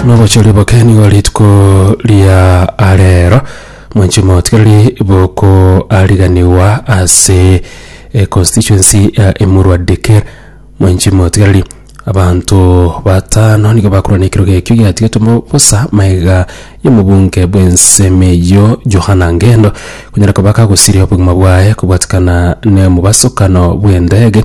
nobochori boke nigo rituko ria arero mwanchi motigareri bokoariganiwa ase eh, constituency ya emurwa dikir mwanchi motigareri abanto batano nigo bakorwa na ekerogo ekio giatigetwe mo- bosa maega y'omobunge bw'ensemo eyio johana ngendo konyara koba kagosiria obogima bwaye kobwatikana n'omobasokano bw'endege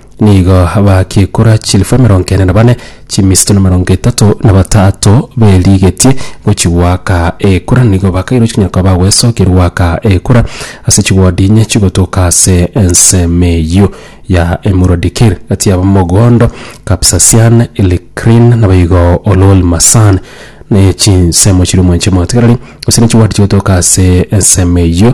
Nigo bakiekora chilifu emerongo ene na bane, chimisto na emerongo etato na batato berigetie gochia goaka ekura. Nigo bakairwa chinyora koba bagwesokia goaka ekura ase chigodi inye chigotoka ase ensemo eyio ya Emurua Dikir, gati yabo Mogondo, Kapsasian, Ilikrin, naboigo Ololmasan, ne chinsemo chiria omwancha omotegereri, gose ne chigodi chigotoka ase ensemo eyio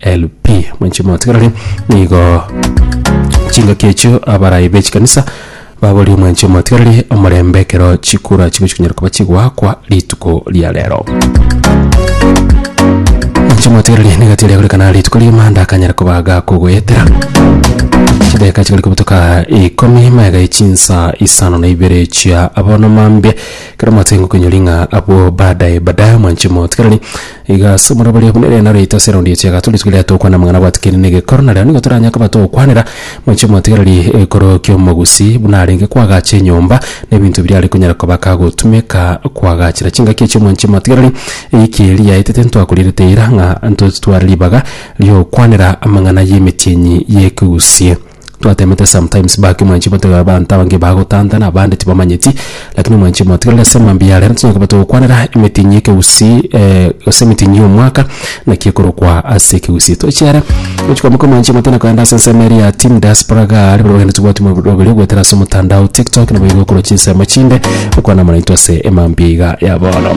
LP. Mwenche motigarane nigo chingaki echio abarai bechikanisa baborie mwenche motigarane omorembe ekero chikura chigochi kunyara koba chigoakwa rituko ria rero. Mwenche motigarane nigati eria gorekana rituko ria emanda akanyara koba gakogoetera chideka chigari kobutoka ikomi mega echinsa isano na ibere chia abono mambia ekero mwatenge koinyori ng'a abwo badae badae mwenche motigarane Iga ase omorero baria buna erinde naro yaito ase eraundi echi ya gatano rituko riria togokwana amang'ana abwatikirie negekoro, nareo nigo toranyare koba togokwanera mochie motigereri ekero ki'omogusi buna arenge koagacha enyomba, na ebinto biria are konyara koba akagotumeka koagachera chingaki echio mochie motigereri eyiki eria yaetete ntwakorierete ira ng'a ntotware ribaga ri'ogokwanera amang'ana y'emetienyi y'ekegusie. Twateemete sometimes back mwanchi botiga abanto abange bagotantana abande tibamanyeti lakini mwanchi motigereri ase mambia are tonya koba togokwanera emitinyi y'ekegusii gose emitinyi y'omwaka naki ekorokwa ase ekegusii toche are gochi kwamaka mwanchi motana kogenda ase ensemo eria ya team diaspora igaa aria barabwo tobwati mobere goetera ase omotandao tiktok nabo igo okoroche chinsemo chinde okwana moraito ase emambia iga ya bono.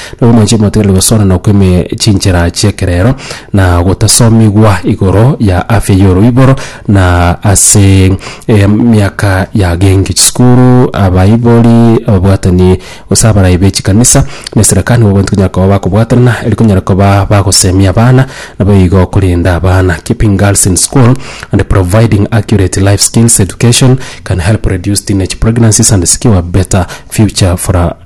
Nobomanchi motigaire gosoorana okw'ime chinchera chi'ekerero, na gotasomigwa igoro ya afya y'oroiboro, na ase emiaka yagenki chisukuru, abaibori, ababwatani, gose abarai be chikanisa, na esereka nigo bonsi konyara koba bakobwatanana eri konyara koba bagosemia abana, nabo igo korenda abana. Keeping girls in school and providing accurate life skills education can help reduce teenage pregnancies and secure better future for our.